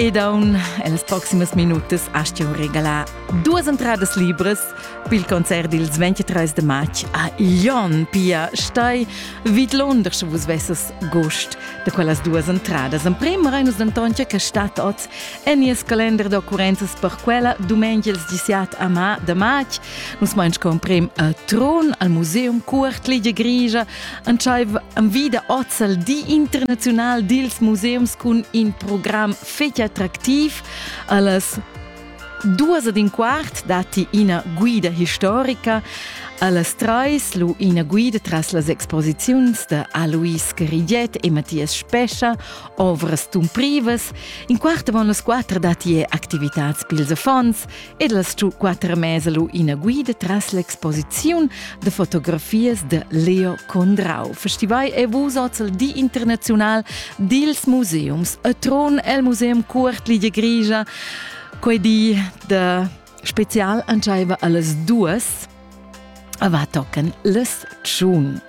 E daun els proximas minutas astio regalar duas entradas libres pel concert ils 23 de march a Lyon, Pia Stei, vidlon der che vus vesses gust de quellas duas entradas. En prima Reinus d'Antonio che stat oz en nies kalender d'occurrenzas per quella domenica ils 17 a ma de march. Nus main comprim al tron al museum Cuort Ligia Grigia Entscheiv am vida ozal di international dils museums cun in program fetg attractiv allas duas ed in quart datti ina guida historica, allas treis lu ina guida tras las exposiziuns da Alois Carigiet e Mathias Spescha, ovras tumprivas. In quart avon las quater datti activitads pils affons, ed el stu quatter mesa lu ina guida tras l'exposiziun de fotografias de Leo Condrau. Festival e vus ozel di internazional dils museums a Tron el Museum Cuort Ligia Grigia. Quei di de special antschaiva allas duas va tocken les tschun.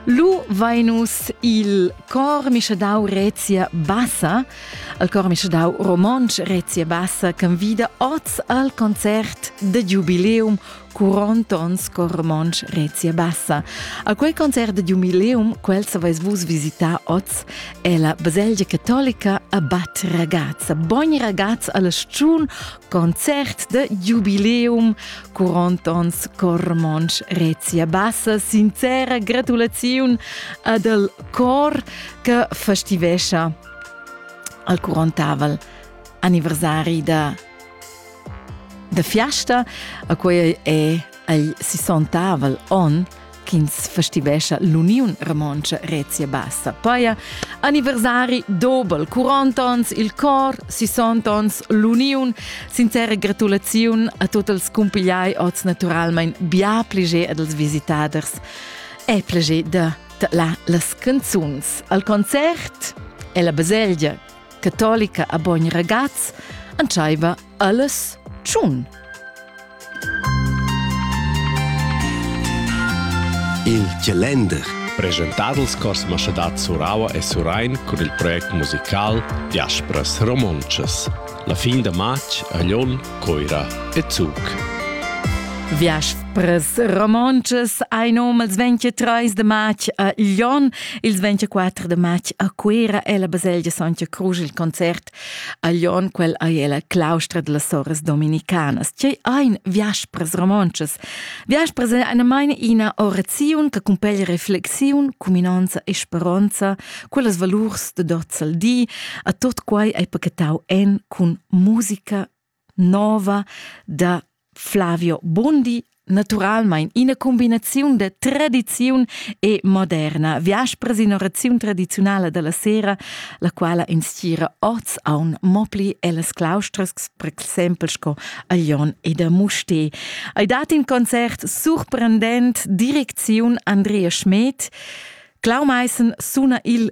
Lu vainus il cor mischedau Rezia Bassa, al cor mischedau romontsch Rezia Bassa convida oz al concert de Jubileum Curontons cor romontsch Rezia Bassa. A quel concert de Jubileum, quel savais vus visita oz, è la baselgia cattolica a Bad Ragazza. Bogni ragazz alle Stun Concert de jubileum, 40 ans Cormonsch Rezia Bassa. Sincera gratulaziun ad el cor che festivescia al 40 anniversari da, da fiasta. A quei è il 60 on ch'ins festivescha l'Uniun Romontscha Rezia Bassa paia anniversari dobel 40 ans il cor, 60 ans l'uniun. Sincera gratulaziun a tutti els cumpigliai oz naturalmein bia pliger ad els visitaders e pliger da la las canzuns. Al concert è la baselgia catolica a Bogn Ragaz antschaiva Alles tschun. Il Gelender. Presentadels cors maschadad Suraua e Surain cun il project musical Diaspras Romontschas. La fin da matg a Lyon, Coira e Zug. Viaspres romontschas ein um ils 23 de matg a Lyon, ils 24 de matg a Cuera e la baselgia Sontga Cruz il concert A Glion quel ei ella claustra dellas soras dominicanas. Tgei ein viaspras romontschas? Viaspras ein einamain ina oraziun che cumpeglia reflexiun, cuminonza e speronza, quellas valurs de dot sal di, a tot quai ei pachetau en cun musica, nova da Flavio Bondi naturalmein ina combinaziun da tradiziun e moderna viaspras ina raziun tradiziunala dalla sera la quala instira oz aun mo pli ellas claustras per exempel sco a Lyon ed a Musté ei dat in concert surprendent direcziun Andrea Schmed Clau Meissen suna il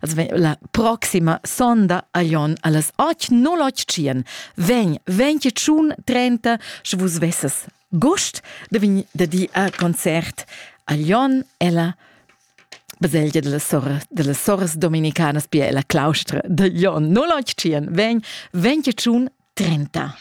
als vegn la proxima sonda a Jon alles 8.08 Vegn, venti tschun trenta, sche vus vesses gust de vin de di a concert a Jon ella baselgia delle sorres, delle sorres dominicanas pia la claustra de Jon 08 vegn, venti tschun trenta.